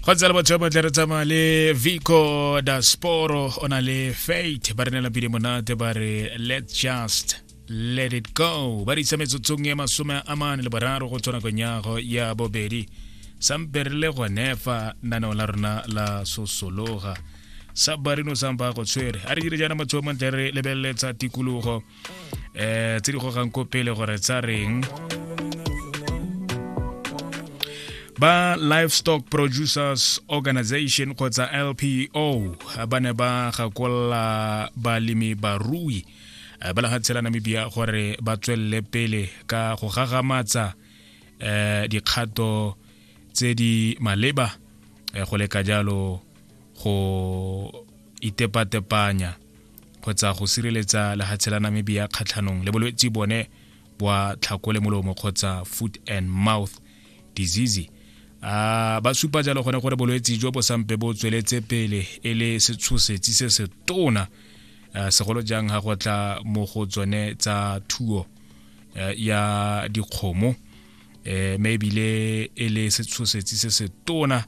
go tsela batho ba tle re tsamaya le vico dasporo o na le fate ba re nela pele monate ba re let just let it go ba re isa metsotsong ya masome a mane le boraro go tswa nakong yago ya bobedi sampe re le gone fa naneo la rona la sosologa sa barino sampa go tshwere a re dire jaana motho o montle re lebeleletsa tikologo eh tse di gogang ko pele gore tsa reng ba livestock producers organization kgotsa lpo ba ne ba gakolla balemi barui eh, ba lefatshe la namibia gore ba tswelele pele ka go gagamatsa um dikgato tse di maleba eh, go leka jalo go itepatepanya kgotsa go sireletsa lehatshe la namibia kgatlhanong le bolwetse bone bwa tlhako le molomo kgotsa foot and mouth disease a ba supa jalo gone gore bolwetse jo bo sampe bo tsweletse pele e le setshosetsi se se tona segolo jang ga go tla mo go tsone tsa thuo ya dikgomo um maybe le e le setshosetsi se se tona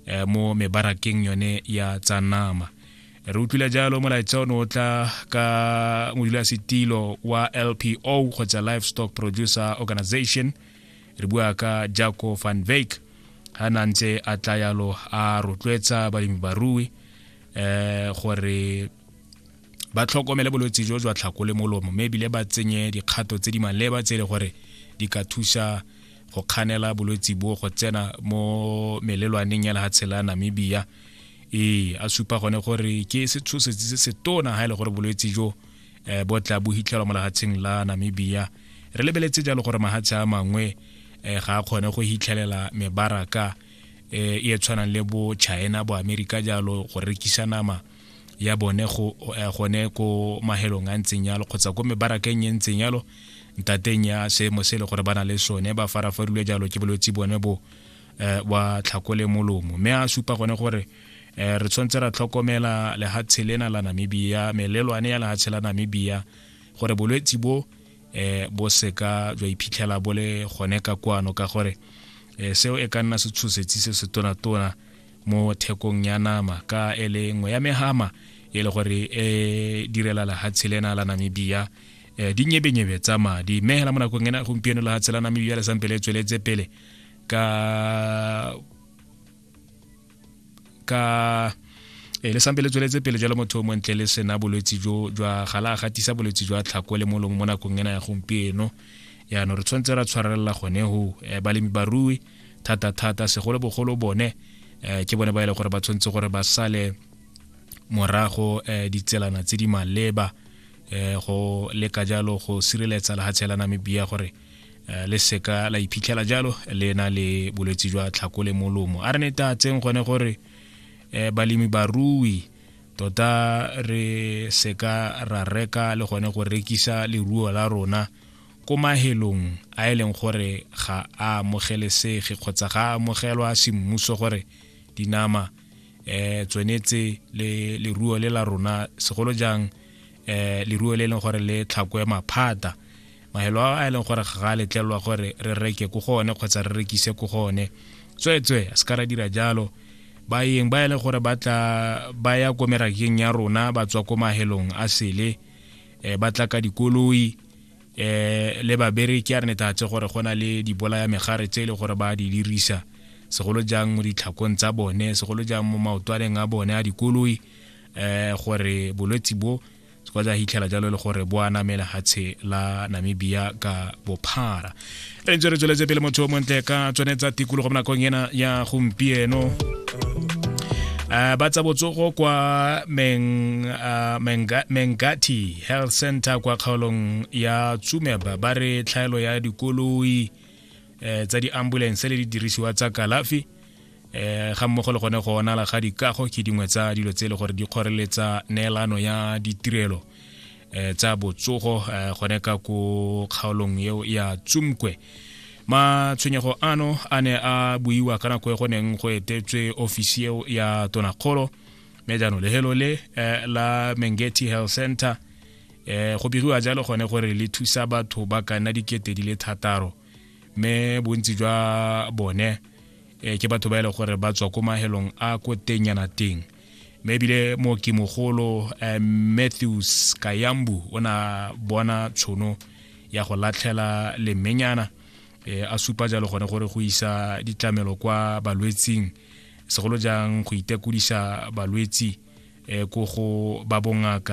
eh, mo mebarakeng yone ya tsa nama re utlwile jalo molaetsa ono o tla ka modulasetilo wa lpo kgotsa livestock producer organization re bua ka jaco van vake ga na ntse a tla yalo a rotloetsa balemi barui um gore ba tlhokomele bolwetse jo jwa tlhako le molomo mme ebile ba tsenye dikgato tse di maleba tse e le gore di ka thusa go kganela bolwetse bo go tsena mo melelwaneng ya lehatshe la namibia ee a supa gone gore ke setshosetsi se se tona ga e le gore bolwetse jo um eh, bo tla bo hitlhelwa mo lehatsheng la namibia re lebeletse jalo gore mahatshe a mangwe um ga a kgone go hitlhelela mebaraka um e tshwanang le bo china bo amerika jalo go rekisa nama ya bone go eh, gone ko mahelong a ntseng yalo kgotsa ko mebarakeng e ntseng yalo ntateng ya seemo se e le gore ba na le sone ba farafarilwe jalo ke bolwetse bone bo eh, wa tlhakole molomo mme a supa gone gore eh, re tshwanetse ra tlhokomela lehatshe lena la namibia melelwane ya lehatshe la namibia gore bolwetse bo eh, bo seka jwa iphitlhela bo le gone ka kwano ka gore eh, seo e ka nna setshosetsi se se tonatona mo thekong ya nama ka e le nngwe ya megama e le gore e direla lehatshe lena la namibia um dinyebenyebe tsa madi mme hela mo nakong ena gompieno lehatshe la namibia le sampe le tsweletse pele ka ka e le sampe le tsweletse pele jalo motho o montle le sena bolwetse jo jwa ga la gatisa bolwetse jwa tlhako le molomo mo nakong ena ya gompieno yaanong re tshwanetse ra tshwarelela gone go balemi barui thata-thata segolobogolo bone um ke bone ba e le gore ba tshwanetse gore ba sale morago um ditselana tse di maleba um go leka jalo go sireletsa lehatshe la namibia gore Eh, le seka la iphitlhela jalo le na le bolwetse jwa tlhako le molomo a re ne tatseng gone gore eh, balemi barui tota re seka ra reka le gone go rekisa leruo la rona Ko mahelong a e leng gore ga a amogelesege kgotsa ga a amogelwa semmuso gore dinama eh tsone tse le leruo le la rona segolo jang eh leruo le e leng gore le tlhakwe maphata mahelo a e leng gore ga a letlelwa gore re reke ko go one kgotsa re rekise ko go one tsweetswe a se ka ra dira jalo baeng ba e leng gore ba tla ba ya ko merakeng ya rona ba tswa ko mahelong a sele eh, ba tla ka dikoloi eh le babereki a re netatse gore go na le dibolaya megare tse e le gore ba di dirisa segolo jang mo ditlhakong tsa bone segolo jang mo maotwaneng a bone a dikoloi eh gore bolwetsi bo se kwa ja hitlhela jalo le gore bo a namela hatshe la namibia ka bophara re ntse re tsweletse pele motho o montle ka tsone tsa tikologo mo nakong ena ya gompieno Uh, ba tsa botsogo kwa meng, uh, menga, mengati health center kwa kgaolong ya tsumeba ba re tlhaelo ya dikoloi eh, tsa di-ambulance le didirisiwa tsa kalafi eh, ga mmogo le gone go onala ga dikago ke dingwe tsa dilo tse e le gore di kgoreletsa neelano ya ditirelo eh, tsa botsogo eh, gone ka ko kgaolong eo ya tsumkwe matshwenyego ano a ne a buiwa ka nako e go neng go etetswe ofisi eo ya tonakgolo mme jaanong lehelo le eh, la mengeti health center eh, go biriwa jalo gone gore le thusa batho ba ka nna dikete di le thataro mme bontsi jwa bone eh, ke batho ba e leng gore ba tswa ko mahelong a ko tennyana teng mme ebile mooki mogolo eh, matthews kayambu o na bona tshono ya go latlhela lemenyana eh, a supa jalo gone gore go isa ditlamelo kwa balwetsing segolo jang go itekodisa balwetsi eh, ko go ba bongaka